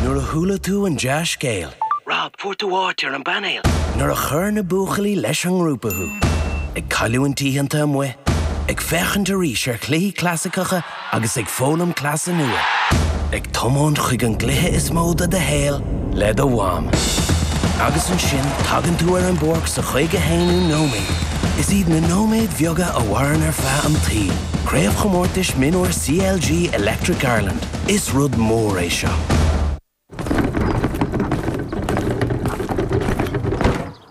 Nuair a chuala tú an dea-scéal. Rob, fuair tú áit ar an bpainéal! Nuair a chuir na buachaillí leis an ngrúpa thú. Ag cailliúint oícheanta amuigh. Ag féachaint arís ar chluichí clasaiceacha agus ag foghlaim cleasa nua. Ag tiomáint chuig an gcluiche is mó de do shaol le do mham. Agus ansin tagann tú ar an bpáirc sa chaoga haonú nóiméad. Is iad na nóiméid bheaga a mhaireann ar feadh an tsaoil. Craobhchomórtais Mionúr CLG Electric Ireland. Is rud mór é seo.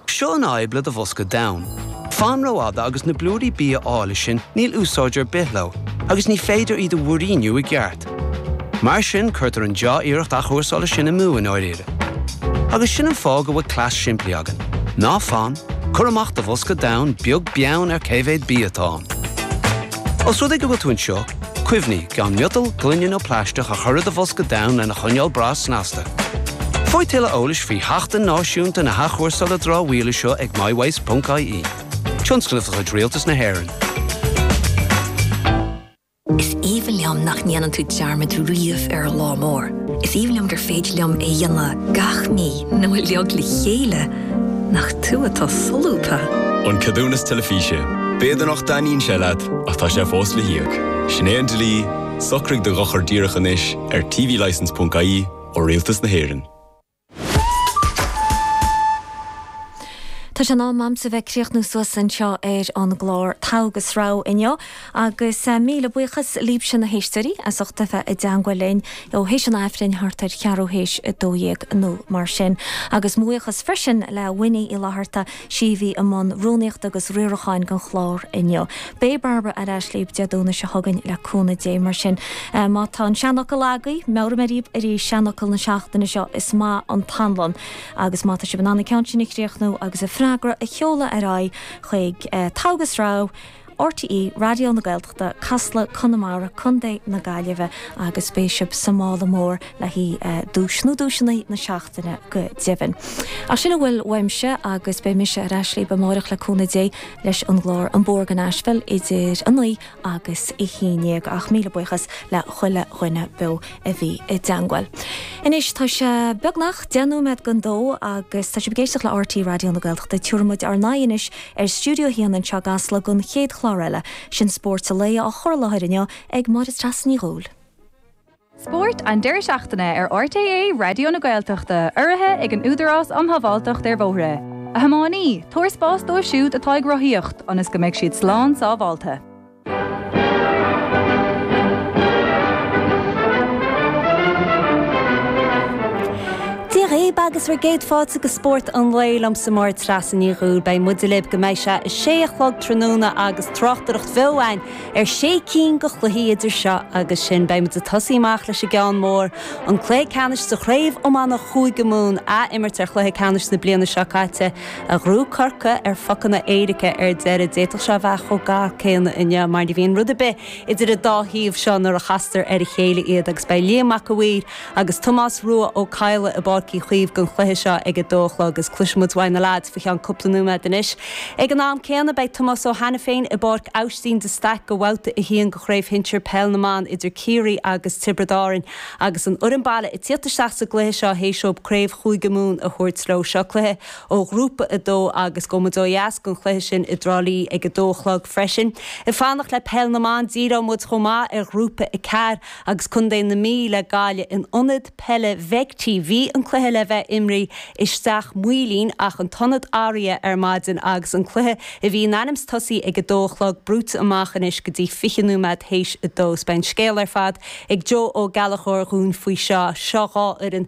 Seo an fhadhb le do bhosca donn. Fan rófhada agus na blúirí bia áille sin níl úsáid ar bith leo agus ní féidir iad a mhúiríniú i gceart. Mar sin cuirtear an dea-iarracht athchúrsála sin amú i ndáiríre. Agus sin an fáth go bhfuil cleas simplí againn. Ná fan, cuir amach do bhosca donn beag beann ar cé mhéad bia atá ann. Os rud é go bhfuil tú anseo, Cuimhnigh, gan miotal, gloine nó plaisteach a chur i do bhosca donn lena choinneáil breá snasta. Faigh tuilleadh eolais faoi Sheachtain Náisiúnta na hAthchúrsála Dramhaíola seo ag mywaste.ie, tionscnamh de chuid Rialtas na hÉireann. Is aoibhinn liom nach ndéanann tú dearmad riamh ar an lá mór. Is aoibhinn liom gur féidir liom é a dhéanamh gach mí nó uilig le chéile. Nach tú atá solúbtha! An Ceadúnas Teilifíse, B'fhéidir nach dtaitníonn sé leat ach tá sé fós le híoc. Sin é an dlí, socraigh do dhochar díreach anois ar tvlicense.ie ó Rialtas na hÉireann. Tá sé in am agamsa a bheith críochnú suas anseo ar an gclár Togha agus Rogha inniu. Agus míle buíochas libhse na héisteoirí as ucht a bheith i dteangmháil linn ó th'éis an Aifrinn thart ar cheathrú th'éis a dó dhéag nó mar sin. Agus mo bhuíochas freisin le Winnie Uí Fhlaithearta, sí a bhí i mbun rúnaíochta agus riaracháin don chlár inniu. Beidh Barbara ar ais libh Dé Domhnaigh seo chugainn le cúnamh Dé mar sin. Má tá an seanfhocal agaibh, meabhróidh mé dhaoibh arís seanfhocal na seachtaine seo, Is maith an t-anlann. Agus má tá sibh in ann an ceann sin a chríochnú agus an freagra a sheoladh ar aghaidh chuig, Togha agus Rogha, RTÉ Raidió na Gaeltachta, Casla, Conamara, Co. na Gaillimhe agus beidh sibh sa mála mór le haghaidh duais nó duaiseanna na seachtaine go deimhin. Ach sin a bhfuil uaimse agus beidh mise ar ais libh amáireach le cúnamh Dé leis an gclár An Bóthar go Nashville idir a naoi agus a haon déag. Ach míle buíochas le chuile dhuine beo a bhí i dteangmháil. Anois tá sé beagnach deich nóiméad don dó agus tá sibh ag éisteacht le RTÉ Raidió na Gaeltachta. Tabharfaimid ár n-aghaidh anois Ar Stiúideo 1 anseo i gCasla don chéad chlár eile, Sin Spóirt an Lae, á chur i láthair inniu ag Máire Treasa Ní Dhubhghaill. Spórt an deireadh seachtaine ar RTÉ Raidió na Gaeltachta, urraithe ag an Údarás um Shábháilteacht ar Bhóithre. A thiománaí, tabhair spás dóibh siúd atá ag rothaíocht ionas go mbeidh siad slán sábháilte. Dia dhaoib agus bhur gcéad fáilte go Spórt an Lae liomsa Máire Treasa Ní Dhubhghaill. Beidh muide libh go mbeidh sé a sé a chlog tráthnóna agus tráchtaireacht bheo againn ar sé cinn de chluichí idir seo agus sin. Beidh muid ag tosaí amach leis an gceann mór, an cluiche ceannais sa chraobh iomána Chúige Mumhan, athimirt ar chluiche ceannais na bliana seo caite. A ghnóthaigh Corcaigh ar phocanna éirice ar deireadh. D'fhéadfadh sé a bheith chomh gar céanna inniu mar ní bhíonn rud ar bith idir an dá thaobh seo nuair a chastar ar a chéile iad agus beidh Liam Mac a'Mhaoir agus Tomás Rua Ó Cadhla i bPáirc Uí Chaoimh don chluiche seo ag a dó a chlog agus cloisfidh muid uaidh na leaids faoi cheann cúpla nóiméad anois. Ag an am céanna beidh Tomás Ó hAiniféin i bPáirc Aibhistín de Staic go bhabhta a haon go Chraobh Shinsir Peil na mBan idir Ciarraí agus Tiobraid Árainn agus an fhoireann baile ag tíocht isteach sa gcluiche seo théis dóib Craobh Chúige Mumhan a thabhairt leo. Seo cluiche ó Ghrúpa 2 agus gabhfaidh muid ó dheas don chluiche sin i dTrá Lí ag a dó a chlog freisin. Ag fanacht le peil na mban, díreoidh muid chomh maith ar Ghrúpa 4 agus contae na Mí le Gaillimh in Ionad Peile Bheigthí. Bhí an cluiche le bheith imrithe i Steach Maoilín ach an t-ionad athraithe ar maidin agus an cluiche a bhí in ainm's tosaí ag a dó a chlog brúite amach anois go dtí 20 nóiméad théis a dó. Beidh an scéal ar fad ag Joe Ó Gallachóir dhúinn faoi seo. Seo dhá fhoireann.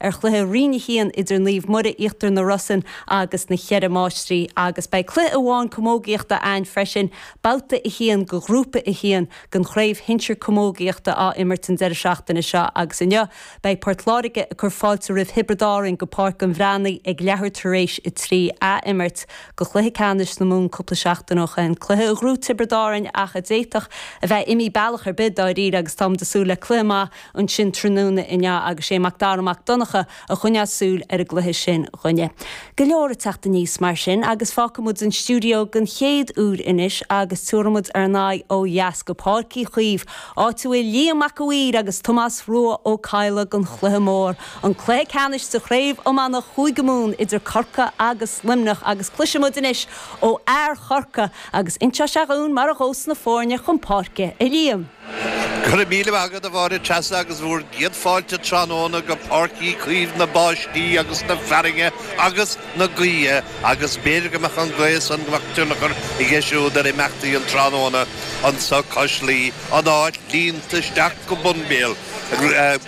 ar chluiche Roinn 1 idir Naomh Muire Íochtar na Rosann agus na Cheithre Máistrí agus beidh cluiche amháin camógaíochta againn freisin, Babhta 1 de Ghrúpa 1 den Chraobh Shinsir Camógaíochta á imirt an deireadh seachtaine seo agus inniu beidh Port Láirge ag cur fáilte roimh Thiobraid Árainn go Páirc an Bhreathnaigh ag leathuair tar éis a trí, athimirt go chluiche ceannais na Mumhan cúpla seachtain ó shin, cluiche a ghnóthaigh Tiobraid Árainn ach a d'fhéadfadh a bheith imithe bealach ar bith dáiríre agus tá muid ag súil le cluiche maith. ansin tráthnóna inniu agus sé Mac Dara Mac Donncha a choinneos súil ar an gcluiche sin dhúinne. Go leor ag teacht aníos mar sin agus fágfaidh muid an stiúideo den chéad uair anois agus tabharfaidh muid ár n-aghaidh ó dheas go Páirc Uí Chaoimh, áit a bhfuil Liam Mac a' Mhaoir agus Tomás Rua Ó Cadhla don chluiche mór, an cluiche ceannais sa Chraobh Iomána Chúige Mumhan idir Corcaigh agus Luimneach agus cloisfidh muid anois ó fhear Chorcaí agus inseoidh sé dhúinn mar a ghabhas na foirne chun páirce, a Liam. Go raibh míle maith agat, a Mháire Treasa, agus bhúr gcéad fáilte tráthnóna go Páirc Uí Chaoimh na báistí agus na fearthainne agus na gaoithe, agus b'fhéidir go mbeadh an ghaoth san go mbeadh tionchar aige siúd ar imeachtaí an tráthnóna anso Cois Laoi, an áit líonta isteach go bun béal,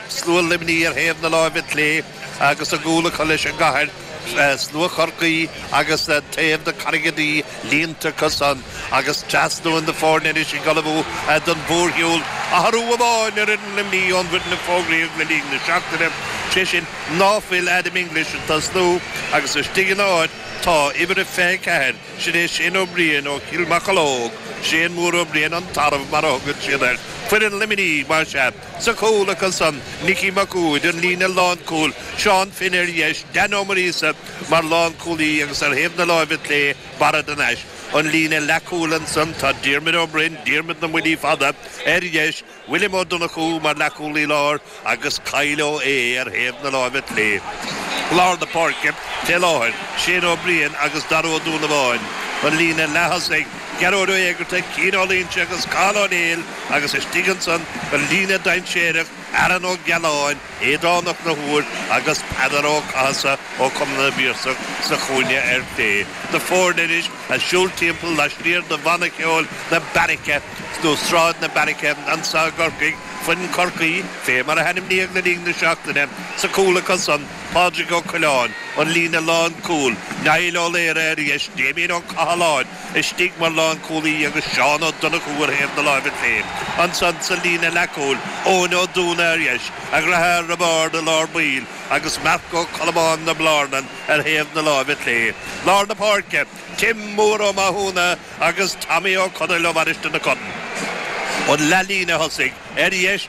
slua Luimnigh ar thaobh na láimhe clé, agus a gcúl acu leis an gcathair, slua Chorcaí agus taobh na Carraige Duibhe líonta acu san, agus tosnaíonn na foirne anois ag ullmhú don mhórshiúl athrú amháin ar fhoireann Luimnigh ón bhfoireann a fógraíodh le linn na seachtaine, sé sin ná fuil Adam English ag tosnú, agus istigh ina áit tá uimhir a 24, sin é Shane Ó Briain ó Chill Mocheallóg, Shane Mór Ó Briain an Tarbh mar a thugann siad air, foireann Luimnigh, más ea. Sa chúl acu san, Nicky Mac Uaid, an líne lánchúil, Seán Finn, ar dheis, Dan Ó Muiríosa mar lánchúlaí agus ar thaobh na láimhe clé, Barra de Nais. An líne leathchúil ansan, tá Diarmuid Ó Broin, Diarmuid na mBuillí Fada, ar dheis, William Ó Donnchú mar leathchúlaí láir agus Kyle Ó hAodha ar thaobh na láimhe clé. I lár na páirce fé láthair, Shane Ó Briain agus Darragh Ó Donnabháin, an líne leath-thosaigh. Gearóid Ó hÉigeartaigh, Cian Ó Loingsigh agus Cathal Ó Néill agus istigh ansan an líne dainséarach, Aaron Ó Giolláin, Aodán Ó Conchúir agus Peadar Ó Cathasaigh ó Chumann na bPiarsach sa chúinne ar chlé, na foirne anois a' siúl timpeall laistiar de bhanna ceoil na Beairice, nó Sráid na Beairice anso i gCorcaigh, foireann Chorcaí, fé mar a hainmníodh le linn na seachtaine, sa chúl acu san. Pádraig Ó Coileáin, an líne lánchúil, Niall Ó Laoire ar dheis, Damien Ó Cathaláin istigh mar lánchúlaí agus Seán Ó Donnchú ar thaobh na láimhe clé. Ansan sa líne leathchúil, Eoin Ó Dúna ar dheis, a dheartháir Roibeárd i lár baill agus Marc Ó Colmáin na Blarnan ar thaobh na láimhe clé. Lár na páirce, Tim Mór Ó Mathúna agus Tommy Ó Conaill ó Mhainistir na Corann. An leathlíne thosaigh, ar dheis,